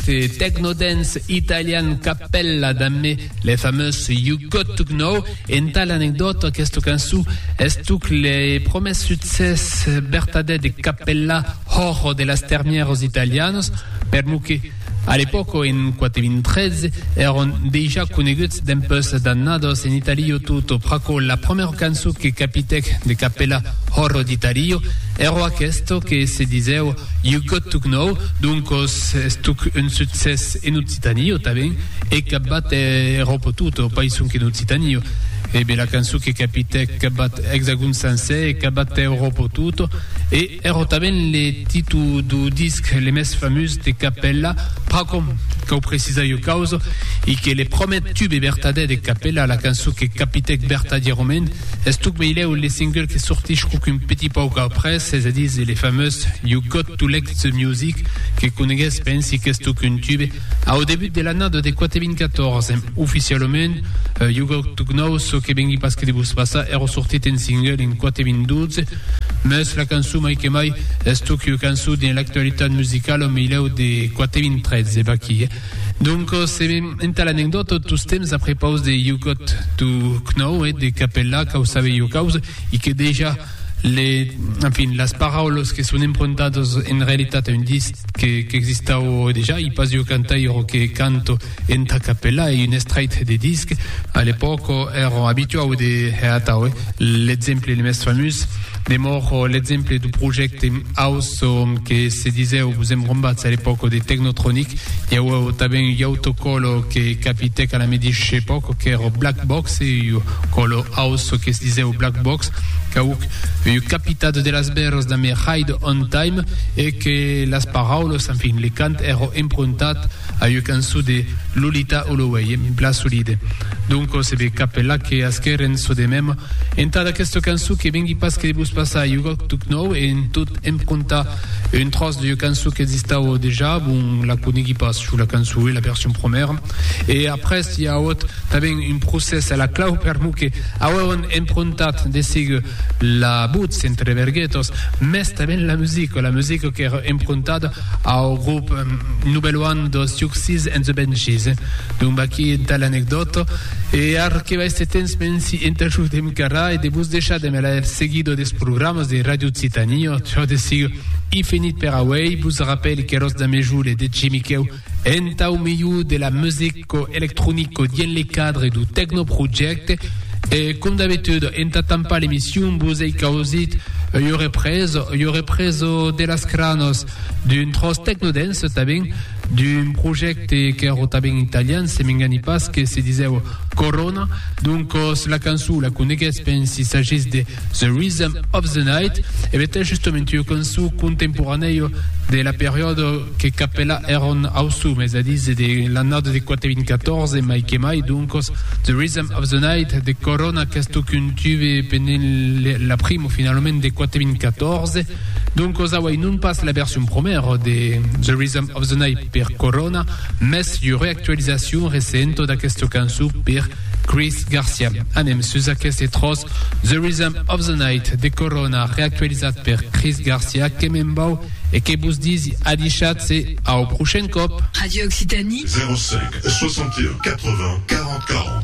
The techno-dance italian Cappella Damme le fameux You Got To Know. Entà l'anecdòta, aquesta cançon estuc le promès succès vertadèr de Cappella hors de las termièras italianas, permò que, a l'epòca, en 4.013, èron dejà coneguts dempuèi d'annadas en Italia tota pr'aquò la promèra cançon que capitèc de Cappella hors d'Italia, Ero aquesto que se disèu You got to Gnou, doncos estoc un succès en Occitanie, o tanben hè capbat Eròpa o tot, o païson qu'en Occitanie. Hè bela cançon que capitèc capbat Hexagon sancèr, hè capbat Eròpa o tot, e ero tanben le titu do disc le mès famús de Capella, pr'acòm cau precisar ua causa, i que le promèt tube bertadè de Capella, la cançon que capitèc bertadièrament, Es tot meilèu le single que sortís quauqu'un petit pauc après, es a dire le famós You Got To Like The Music que conegués pensi qu'es tot qu'un tube, au debut de l'annada de 4014. Oficialament, You Got To Know çò que vengui pas que de vos passar èra sortit en single en 4012, mès la cançon mai que mai es tot qu'ua cançon dins l'actualitat musicala meilèu de 4013, vaquí. Donc, se me entà l'anecdòta, tostemps a prepaus de You Got To Know e de Capella, quau sabe jo caus, i que dejà le, enfin, las paraulas que son empruntadas en realitat a un disc que qu'existau dejà, i pas jo cantaire que canto entà Capella e un estrait de disc. A l'epòca èra abituau de hè atau, eh? L'exemple le mès famús demòra l'exemple du projècte Aus som que se disèu, vos èm rombats a l'epòca de Technotronic, i auèu tanben ui auto còlo que capitèc a la medish epòca qu'èr Black Box, e ui còlo aus que se disèu Black Box qu'auc ui capitat de las bèrs damb Ride On Time, e que las paraules, enfin, le cant èr emprontat A ua cançon de Lolita Holloway, en plan solide. Donco se be cap la que asqueren çò de mem entà d'aquesta cançon que vengui pas que de vos passar ua tuc nòu e en tot em contar un tròç d'ua cançon qu'existava dejà, bon, la coneigui pas jo la cançon e la version promèra e après i a auot tanben un procès a la clau per mò que auèron emprontat de sigue la votz entre verguetas, mès tanben la musica, la musica qu'èra emprontada Au grop Nubelo an dos Tiuxis en The Benchies, donc aquí entà l'anecdòta, e ar que vaiste temps men si entajoudem qu'ara e de vos deishar de me laer seguido des programas de Radio Occitania, çò de sigur i finit per auei, vos rapèli qu'eros damejole de Jimiquèu entau milhor de la music, Cò electronic cò dient le cadre du Tecnoprojecte e com d'abetud enta tampar l'emission vos ei causit ua represa, ua represa de las cranas d'un tròç tecnodance tanben, d'un projecte qu'èra tanben italian se m'engani pas que se disèva Corona, doncas la cançon la coneguètz pensi s'agís de The Rhythm of the Night, e bèth es justament ua cançon contemporanèia de la periòda que capèla Aaron Howsam, es a díser de l'annada de 4.014 mai que mai, doncas The Rhythm of the Night de Corona qu'estó contuve pendent la primo finalament de 4.014, doncas auei non pas la version promèra de The Rhythm of the Night per Corona, mès ua reactualizacion recenta d'aquesta cançon per Chris Garcia. Anem sus aqueste tròç The Rhythm of the Night de Corona reactualizat per Chris Garcia que me'n vau e que vos disi adishatz-se au prochain còp! Radio Occitanie. 05 61 80 40 40.